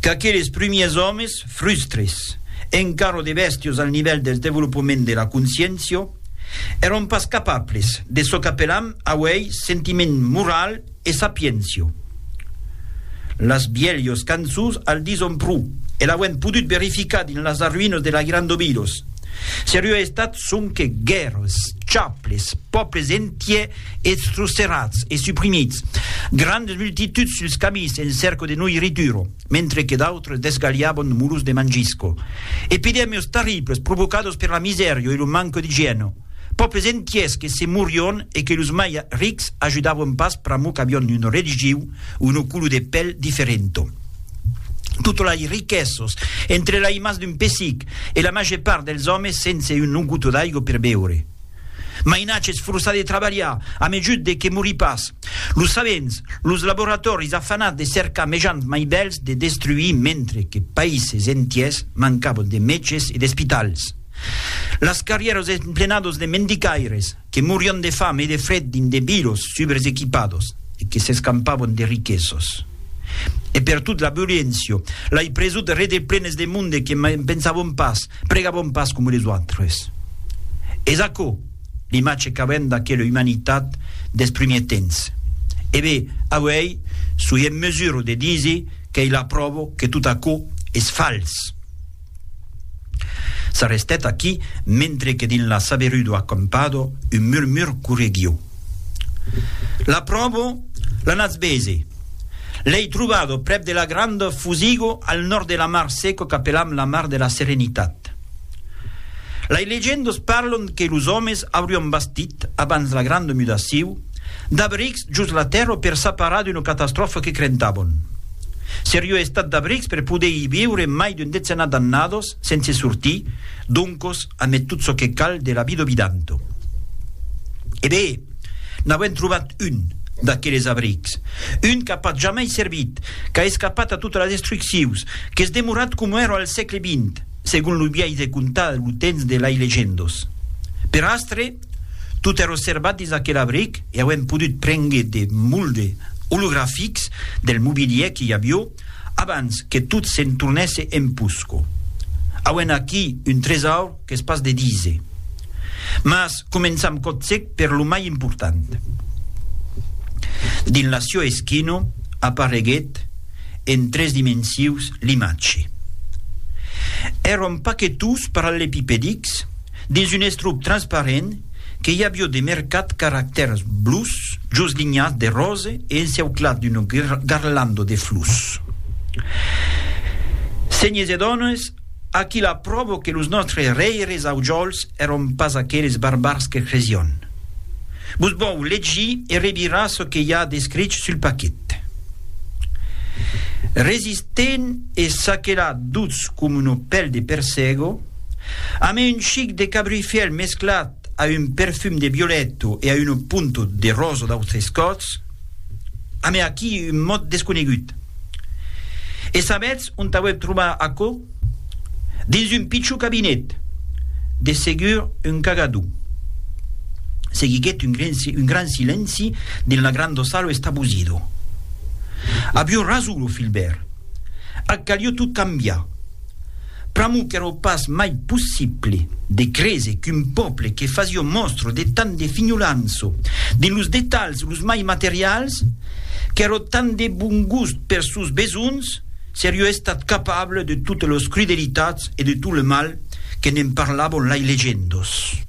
Qu'aqueles prumiers òmes, frustres, encara de bèstios al nivèl del devolopament de la consciéncia, èron pas capables de çò qu'apellam auèi sentiment moral e sapiéncia. Las bielhos cançons al dison pro, e l'auem podut verificar dins las arruïnas de la Gran Dobilos. Se rua estat sonque guèrras, chaples, pòples entiers Eths trusterats e suprimits, grandes multituds suls camins en cerco de noirrituro, mentre que d'autres desgalhaban muros de mangisco. Epidèmios tarribls provocados per la misèrio e lo manco d'igièno. Pòples entiers que se morion e que los mai rics ajudavan pas pr'amor qu'avion un religiu o no colo de pèl diferento. Totes lei riquesas entre lei mas d'un pessic e la màger part dels òmes sense un no gotó d'aigo per beure. Mainatges forçats de trabalhar, a mejut de que morí pas. Los sabents, los laboratòris afanats de cercar mejans mai bèls de destruir mentre que païses entiers mancavan de mètges e d'espitals. Las carrièras emplenadas de mendicaires que morián de fam e de fred dins de vilos subresequipados e que s'escampavan de riquesos. E pertot la violéncia, lai presut rede plenes de monde que mai pensavan pas Pregabon pas coma les autres. Es aquò l'imatge qu'avèm d'aquela umanitat dels primièrs temps. E be, auèi soi en mesura de díser qu'ei la pròva que tot aquò es fals. S'arrestèt aquí, mentre que dins la saberudor acampada un murmur correguiu. L'apròvo, l'anatz bese. L'ei trobado prèp de la granda Fusigo al nòrd de la mar seco qu'apelam la mar de la Serenitat. Lei legendas parlan que los òmes aurián bastit, abans la granda mudaciu, d'abrics jos la tèrra per s'aparar d'una catastròfa que crentavan. Seriá estat d'abrics per poder i viure mai d'un decenat d'annadas, sense sortir, Doncos, amé tot çò que cal de la vida obidanto. E be! N'avem trobat un, d'aqueles abrics. Un qu'a pas jamai servit, qu'a escapat a totas las destruccions, qu'es demorat coma èra al sègle vint, segon lo biais de contar lo temps de lai legendos. Per astre, tot èra servat dins aquel abric e auem podut prengre de molde olografics del mobilièr que i avió, Abans que tot se'n tornèsse en Pusco. Auem aquí un tresaur qu'es pas de díser. Mas començam còtzec per lo mai important. Dins la Sio Eschino apareguèt en tres dimensius l'imatge. Èron pas que tous parallepipedics, Dins un estrup transparent que i avió de mercat caractèrs blus jos linhas de rose e enceuclat d'una garlanda de flus. Senhes e dones, aquí la pròva que los nòstres rèires aujòls èron pas aqueles barbars que cresión. Vos vòu legir e revirar çò que i a d'escrich sul paquet. Resistent e saquelat dutz com una pèl de persègo, A mai un chic de cabrifièl mesclat a un perfum de violèto e a un punto de rosa d'autres còps, a mai aquí un mot desconegut. E sabètz ont auèp trobar aquò? Dins un pichon cabinet, de segur un cagador. Seguiguèt un un gran silenci dins la granda sala estabusido. Avion rason lo Filbèrt. Ac calió tot cambiar. Pr'amor qu'èro pas mai possible de créser qu'un pòble que fasió mòstra de tant de finholança dins los detalhs los mai materials, qu'èro tant de bon gust pers sòus besonhs, serió estat capable de totes los crudelitats e de tot le mal que ne'n parlavon lai legendos.